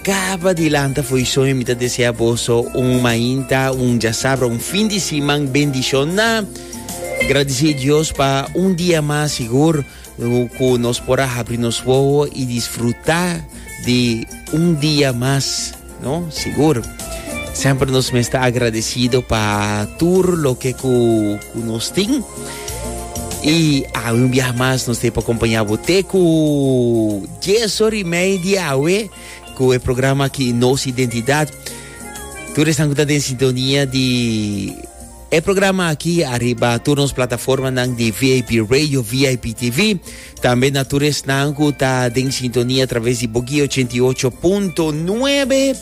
Caba di lanta foisoño mi ta desea boso un mainta, un jasabra, un fin di siman bendicion na. Gradicé Dios pa un dia mas sigur cu nos por a habri nos wowo y disfruta di un dia mas, no? Sigur. Semper nos mes ta agradecido pa tur loke cu, cu nos tin. Y awe un biaha mas nos te pa acompaña bo te cu 10 hora y media awe cu e programa aquí Nos Identidad. Tú están con en sintonía de e programa aquí arriba todos nos plataforma de VIP Radio, VIP TV. Tambe na tur esnan cu ta den sintonia a traves di Boguí 88.9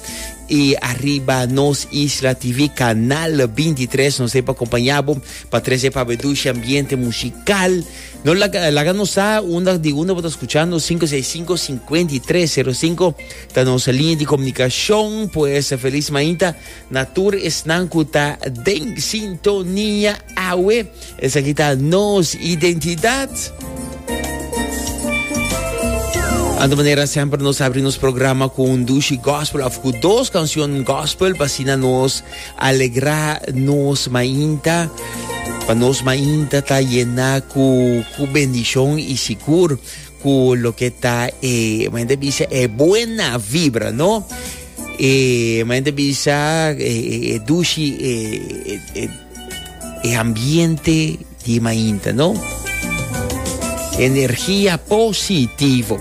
y arriba nos Isla TV canal 23 nos pa acompañabo pa trece pa bedushi ambiente musical no laga, laga nos sa unda di unda bota escuchando 565 5305 ta nos línea de comunicación pues feliz mainta Na tur esnan cu ta den sintonia awe. Esaki ta nos identidad. Anto manera semper nos abri nos programa cu un dushi gospel of cu dos cancion gospel pa sina nos alegra nos mainta. Pa nos mainta ta llena cu, cu bendicion y sigur Cu loke ta e, mende bisa e buena vibra, no? E, mende bisa e, e, e dushi, e, e, e, e ambiente di mainta, no? Energia positivo.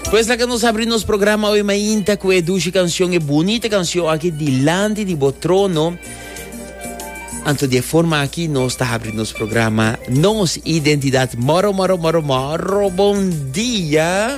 Pues la que nos abrir nos programa hoy mainta cu e dushi canción, e bonita canción aquí, Dilante di Botrono. Anto di e forma aki nos ta habri nos programa Nos Identidad. Moro, moro, moro, moro bon dia!